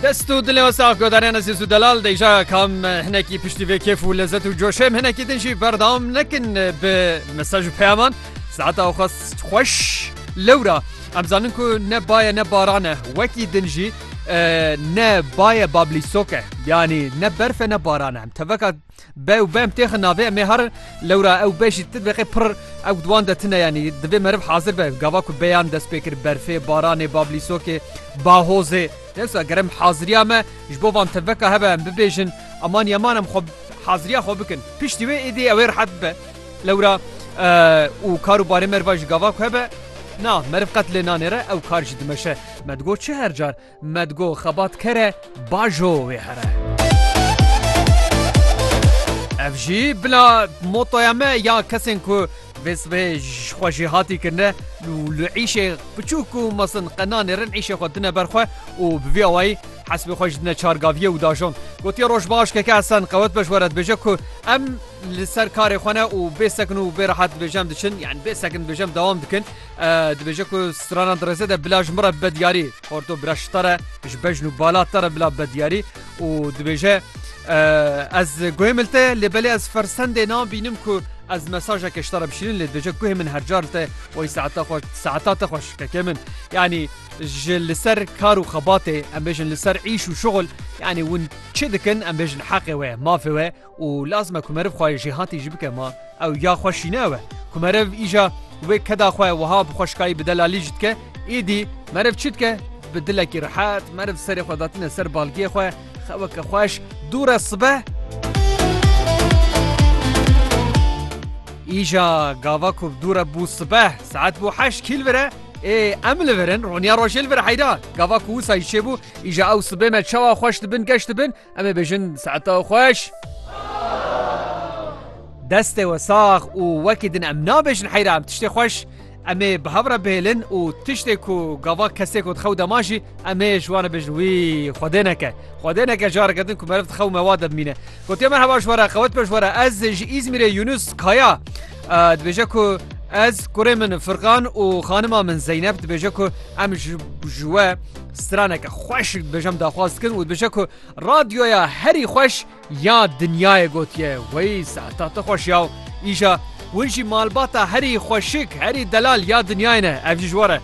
Dest û dilê we sax godarên ezîz û delal deyja kam hinekî piştî vê kêf û lezet û coşê em hinekî din jî berdewam nekin bi mesaj û peyaman saeta xwe xweş lewra em zanin ku ne baye ne baran e wekî din jî ne baye bablîsok e yanî ne berf e ne baran e em teveka Be û bem têxin navê em ê herin. Lewra ew be jî ti deqê pirr ew di wan de tune yanî divê meriv hazir be. Gava ku beyan dest pê kir berfê, baranê, bablîsokê, bahozê. Dewsa ger em haziriya me ji bo van teveka hebe em bibêjin aman yaman em xwe haziriya xwe bikin. Piştî wê êdî ew ê rehet bibe. Lewra û kar û barê meriva ji gava ku hebe na meriv qet lê nanêre ew kar jî dimeşe. Me digot çi her car. Me digo xebat kere bajo wê here. Ev jî bila motoya me ya kesên ku vê sibê ji xwe jê hatî kirine û li îşê piçûk û mezin qe nanêrin îşê xwe dine ber xwe û bi vî awayî hesbê xwe ji dine çargaviyê û dajon. Gotiye roj baş keke Hesen qewet be ji we re dibêje ku em li ser karê xwe ne û bê sekin û bê rehat dibêje em diçin yan bê sekin dibêje em dewam dikin. Dibêje ku stranan di rêzê de bila ji min re bibe diyarî. Xorto bila şita re ji bejn û bala te re bila bibe diyarî û dibêje ez guhê min te lê belê ez fersendê nabînim ku ez mesajeke ji te re bişînin lê dibêje guhê min her car te oy saeta xwe saeta te xwe şikeke min yanî ji li ser kar û xebatê em bêjin li ser îş û şixul yanî hûn çi dikin em bêjin heqê we mafê we û lazime ku meriv xwayê jêhatî jî bike ma ew ya xwe şîne ew e ku meriv îja wê keda xwe wiha bi xweşikayî bi delalî jî dike êdî meriv çi dike bi dilekî rehet meriv serê xwe datine ser balgiyê xwe xeweke xweş dû re sibe îja gava ku dû re bû sibe saet bû heşt kîl vire ê em li virin roniya rojêl vir heyda gava ku wisa jî çêbû îja ew sibê me çawa xweş dibin geş dibin Em ê bêjin saeta xweş. Destê we sax û wekî din em nabêjin heyra em tiştê xweş. Em ê bi hev re bihêlin û tiştê ku gava kesê ku dixew dema jî em ê ji wan re bêjin wî Xwedê neke. Xwedê neke careke din ku meriv dixew me wa de bimîne. Gotiye merheba ji we re qewet be ji we re ez ji Îzmîrê Yunus Kaya dibêje ku ez kurê min Firkan û xanima min Zeynep dibêje ku em ji we Straneke xweş dibêje em daxwaz dikin û dibêje ku radyoya herî xweş ya dinyayê gotiye wey saeta te xweş ya îja win jî malbata herî xweşik herî delal ya dinyayê ne ev jî ji we re.